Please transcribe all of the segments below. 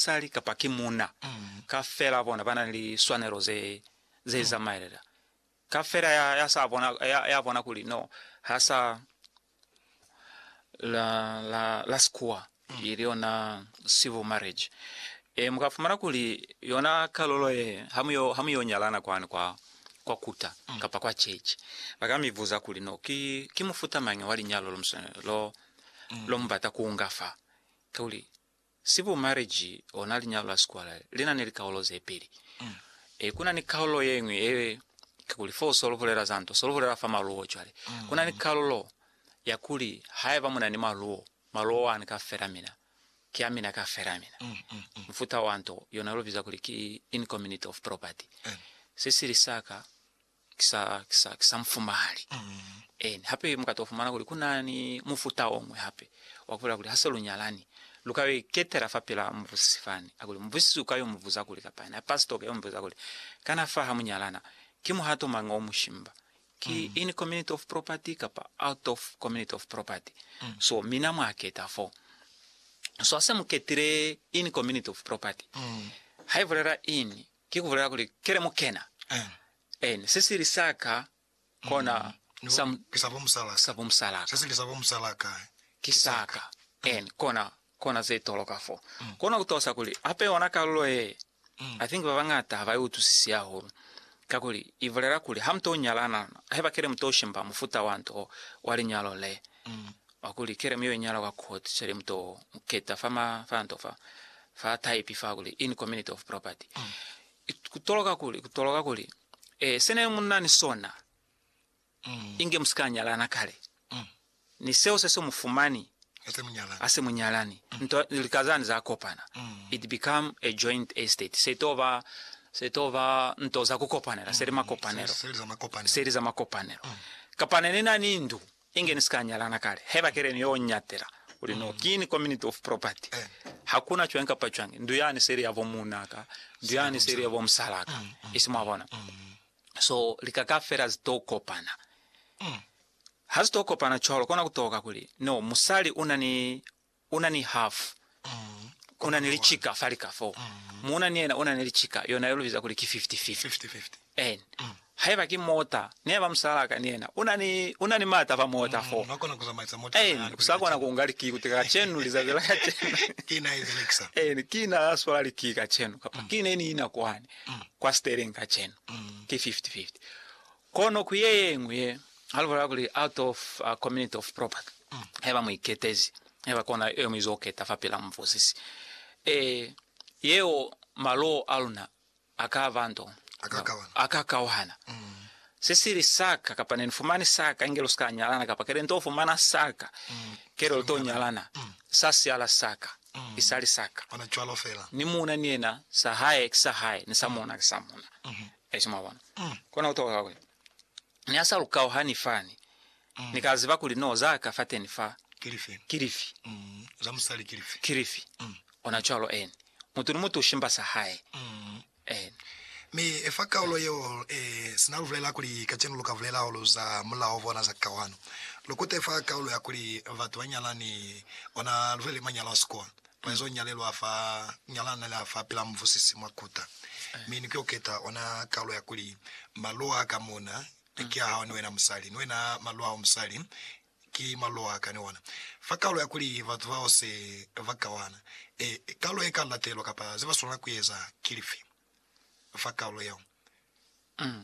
basali kapa ki muuna kafela bona ba na ni liswanelo ze, ze zamaelela. Kafela ya, ya sa bona, ya, ya bona kuli no, ha sa la, la, la sikuwa, ili yona civil marriage. E, muka fumana kuli yona kalulo ye, ha mu yo, ha mu yo nyalana kwani kwa, kwa kuta kapa kwa chechi, baka mi buza kuli no, ki, ki mufuta mañi wa linyalo lo mu swanela, lo, lo mu bata ku unga fa? Kakuli, Civil marriage ona linyalo la sikwala lina ni likaulo zepeli. E, kuna ni kaulo yeñwi ye, kakuli fo so luhulela za nto, so luhulela fa maluo. Cwale, kuna ni kalulo ya kuli haiba muna ni maluo, maluo ani ka fela mina ki a mina ka fela mina. Mufuta wa nto yona lu biza kuli ki in community of property. Se sili saka ki sa, ki sa, ki sa mu fumali. Amen. Hape mu ka to fumana kuli ku na ni mufuta o ñwi hape wa ku bulela kuli ha se lu nyalani, lu ka yo iketela fapil'a mubusisi fani. Ha ku li mubusisi u ka yo mu buza kuli, kapa yena pastor u ka yo mu buza kuli, Kana fa ha mu nyalana, ki muhato mañi o mu shimba? Ki in community of property kapa out of community of property? So mina mwa keta fo. So ha se mu ketile in community of property, ha i bulela in, Ki kubulela kuli, Kele mukena, en, sisili sa ka kona sa, sa bo musala ka, sisili sa bo musala ka ki sa ka, en, kona, kona ze toloka fo. Kona kutosa kuli, hape yona kalulo ye, I think babañata ha ba i utwisisi hahulu, kakuli i bulela kuli ha mu to nyalana, haiba kele mu to shimba mufuta wa nto wa linyalo le, Wa kuli, Keremu yo iñala kwa Court Shelley Mtoo Mketa fa ma fanto fa fa taipi fa kuli, in community of property. I ku toloka kuli, ku toloka kuli, eh, se ne mu na ni sona, inge mu si ka nyalana kale, ni seo se se mu fumani ha se mu nyalani, nto, lika zani za kopana, it become a joint estate. Se to ba, se to ba nto za ku kopanela, se li makopanelo, se li za makopanelo. Kapa ne ni na ni ndu, Inge ni si ka nyalana kale, haiba keleni yo ñatela kuli no, ki ni community of property. Hakuna cwañi kapa cwañi, ndu yani se ili ya bo muuna ka, ndu yani se ili ya bo musala ka, isi mwabona. So lika kafela zi to kopana. Ha zi to kopana cwalo, kona kutoka kuli no, musali una ni una ni hafu, una ni licika fa lika fo, muuna ni yena una ni licika, yona ye lu biza kuli ki fifty-fifty. En, haiba ki mota, ni haiba musalaa ka ni yena una ni, una ni maata fa mota fo. En, u sa kona ku nga likii kutika kacenu, lizazi la kacenu. En, ki na ya swala likii kacenu, kapa ki ne ni ina kwani, kwa steering kacenu. Ki fifty-fifty. Kono ku ye yeñwi ye a lubala kuli out of a community of property, haiba mu iketezi, haiba kona yeo mu izo keta fapil'a mubuzisi, e, yeo maloo a luna a ka ba nto, a ka kauhana. Se sili sa ka, kapa ne ni fumani sa ka, inge lu si ka nyalana, kapa kele nto fumana sa ka, kele lu to nyalana, sa siala sa ka, ki sa li sa ka. Ni muuna ni yena, sa hae ki sa hae, ni sa muuna ki sa muuna. Yesu, mwabona. Kona ku toka kuli Ni a sa lu kauhani fani, Ni ka ziba kuli no za ka fateni fa. Ki lifi? Za musali ki lifi? Ki lifi? Ona cwalo, eni. Mutu ni mutu u shimba sa hae. Eni. Mi fa kaulo yeo, sina lu bulela kuli kacenu lu ka bulela hahulu za mulao bona za kauhano, lu kute fa kaulo ya kuli batu ba nyalani, ona lu bulele manyalo a sikolo, Mwezo nyalelwa fa nyalana la fa pila muvusisi mwa kuta, mi ni koketa ona kalo ya kuli, Malo a ka muna ni ki a hao ni wena musali, ni wena malo ao musali ki malo a ka ni ona. Fa kalo ya kuli batu bao se ba kawana, e, kalo e ka latelwa kapa ze ba swanela ku eza ki lifi fa kalo yeo?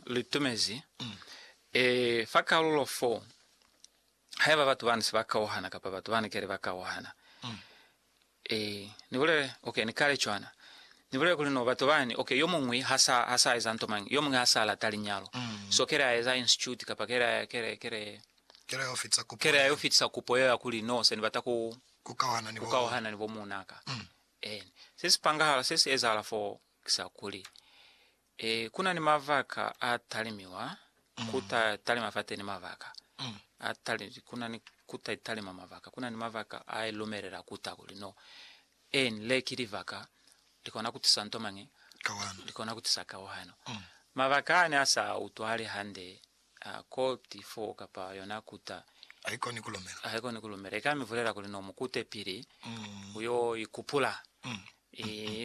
Litumezi, e, fa kalulo 4. Haiba batu bani se ba kauhana kapa batu bani kale ba kauhana, e, ni bulele, ok, ni kale cwana. Ni bulele kuli no batu bani, ok, yo muñwi ha sa, ha sa eza nto mañi, yo muñwi ha sa lata linyalo, so kale a eza institute kapa kale, kale, kale, kale ayo fitisa kupo, kale ayo fitisa kupo yeo ya kuli, no, se ni bata ku, ku kauhana ni bo, ku kauhana ni bo muunaka. Eni. Se si pangahala, se si ezahala foo, ki sa kuli, E, ku na ni mabaka a talimiwa, ku ta talima fateni mabaka a tali, ku na ni ku ta talima mabaka, ku na ni mabaka a e lumelela ku ta kuli no. En, le ki libaka li kona ku tisa nto mañi? Kawano. Li kona ku tisa kawano. Mabaka a ne a sa utwahali hande, a ko ti fo kapa yona ku ta, Haikoni ku lumela. haikoni ku lumela. I ka mi bulela kuli no, mu kute pili, u yo ikupula. E,